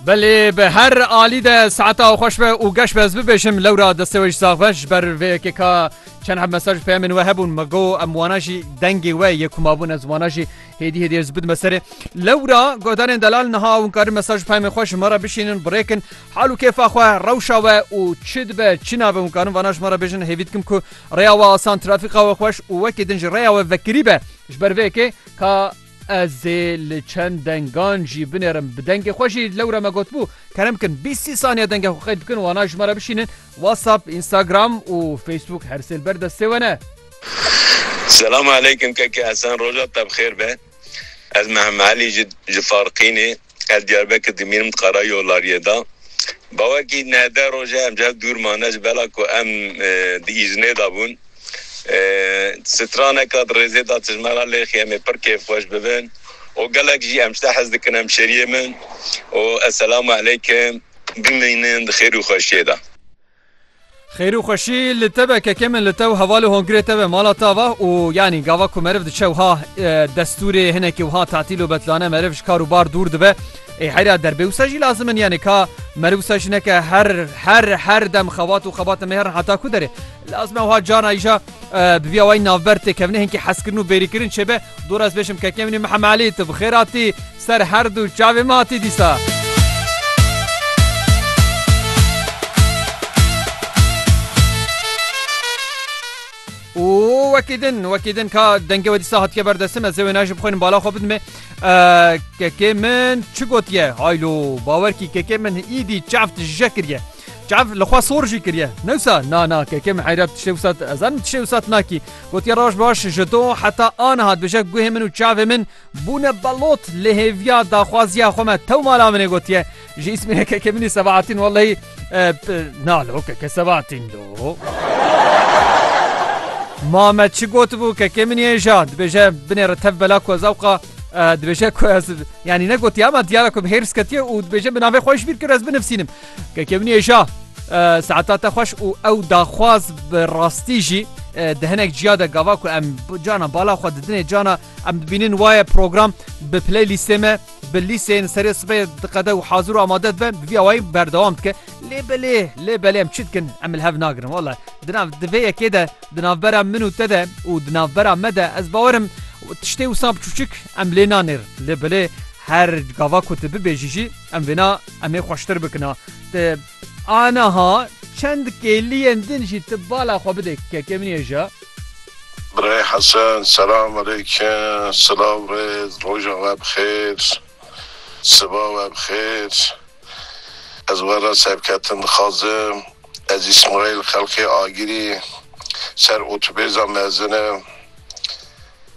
Belê bi her alî de saeta xwe xweş be û geş be ez bibêjim lewra destê we jî sax be ji ber vê yekê ka çend heb mesaj û peyemên we hebûn me got em wana jî dengê we yê ku mabûn ez wana jî hêdî hêdî ez bidime serê lewra godanên delal niha hûn karin mesaj û peyemên xwe ji me re bişînin birêkin hal û kêfa xwe rewşa we û çi dibe çi nabe hûn karin vana ji me re bêjin hêvî dikim ku rêya we asan trafîka we xweş û wekî din jî rêya we vekirî be ji ber vê yekê ka Ez ê li çend dengan jî binêrim. Bi dengê xwe jî lewre me gotbû kerem kin bîst sî saniye dengê xwe qeyd bikin wana ji me re bişînin. WhatsApp, Instagram û Facebook her sê li ber destê we ne. Selam aleykum keke Hesen roja te bi xêr be ez Mehemmelî ji ji Farqînê. Ez Diyarbekir dimînim dixara yolariyê de. Bawekî neh deh roj e em ji hev dûr mane ji bela ku em di îznê de bûn. Straneka di rêzê de tijme ra lêxî em ê pir kêfxweş bibin û gelek jî em ji te hez dikin hemşeriyê min û eselamu eleykim bimînin di xêr û xweşiyê de. Xêr û xweşî li te be kekê min li te û hevalê Hongirê te be mala te ava û yanî gava ku meriv diçe wiha destûrê hinekî wiha tatîl û betlane meriv ji kar û bar dûr dibe ê heyra derbê wisa jî lazim in yanî ka meriv wisa jî neke her her her dem xebat û xebat mêrn heta ku derê lazim e wiha cana îja Bi vîya wayî navber têkevine hinkî hezkirin û bêrîkirin çêbe, dûr ez bêşim kekê min ê Mihemed Elî tu bi xêr hatî ser her du çavê min hatî dîsa. û wekî din wekî din ka dengê we dîsa hatiye ber destê me zê wê ne ji bixwînin bala xwe bidimê kekê min çi gotiye haylo bawer kî kekê min îdî çaft je kiriye Çav li xwe sor jî kiriye. Newsa na na keke min heyra tiştê wisa ez zanim tiştê wisa nakî. Gotiye roj baş ji to heta aniha dibêje guhê min û çavê min bûne belot lê hêviya daxwaziya xwe me tew mala min ê gotiye. Ji îsmînê keke minî Sebahatîn wellehî e, na lo keke Sebahatîn do. Mame çi gotibû keke min ê ja dibêje binêre tev bela ku ez ewqa dibêje ku ez yanî negotiye ama diyara ku hêrs ketiye û dibêje bi navê xweş bîr kir ez binivîsînim Kekemniyê ja saeta te xweş û ew daxwaz bi rastî jî di hinek ciya de gava ku em cana bala xwe didinê cana em dibînin waye program bi playlîstê me bi lîsên serê sibê diqede û hazir û amade dibe bi vî awayî berdewam dike lê belê lê belê em çi dikin em li hev nagirin wala di nav di vê yekê de di navbera min û te de û di navbera me de ez bawerim tiştê wisa biçûçik em lê nanêr lê belê her gava ku tu bibêjî jî em vêna Em ê xweştir bikin a. Ti aniha çend kêliyên din jî ti bala xwe bidê kekê min yê ji. Birayê Hesen, selam aleykim, silav rêz, roja we bi xêr, siba we bi xêr. Ez we re serketin dixwazim. Ez Îsmaîl xelkê Agirî ser otobêza mezin im.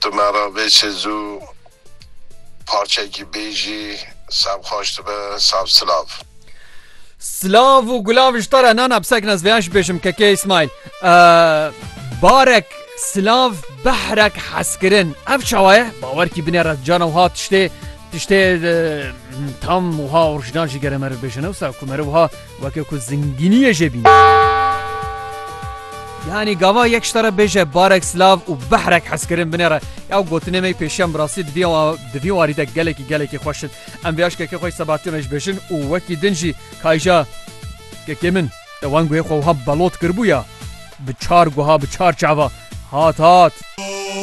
Tu me re vê çê zû parçekî bêjî sab xweş dibe sab silav. Slav û gulav ji te re nana bi sekna ez vêya jî bêjim kekê Îsmaîl barek silav behrek heskirin ev çawa ye bawerkî binê re cana wiha tiştê tiştê tam wiha orjinal jî gere me re bêjin ew sa ku me re wiha Weke ku zingîniyê jê bîne. Yanî gava yek ji te re bêje barek silav û behrek hezkirin binê re. Ya gotinê me pêşiyan bi rastî di vî di vî warî de gelekî gelekî xweş in. Em vê aşkeke xwe ji Sebahattin re ji bêjin û wekî din jî kayja kekê min te wenguyê xwe wiha belot kiribû ya bi çar guha bi çar çava hat hat.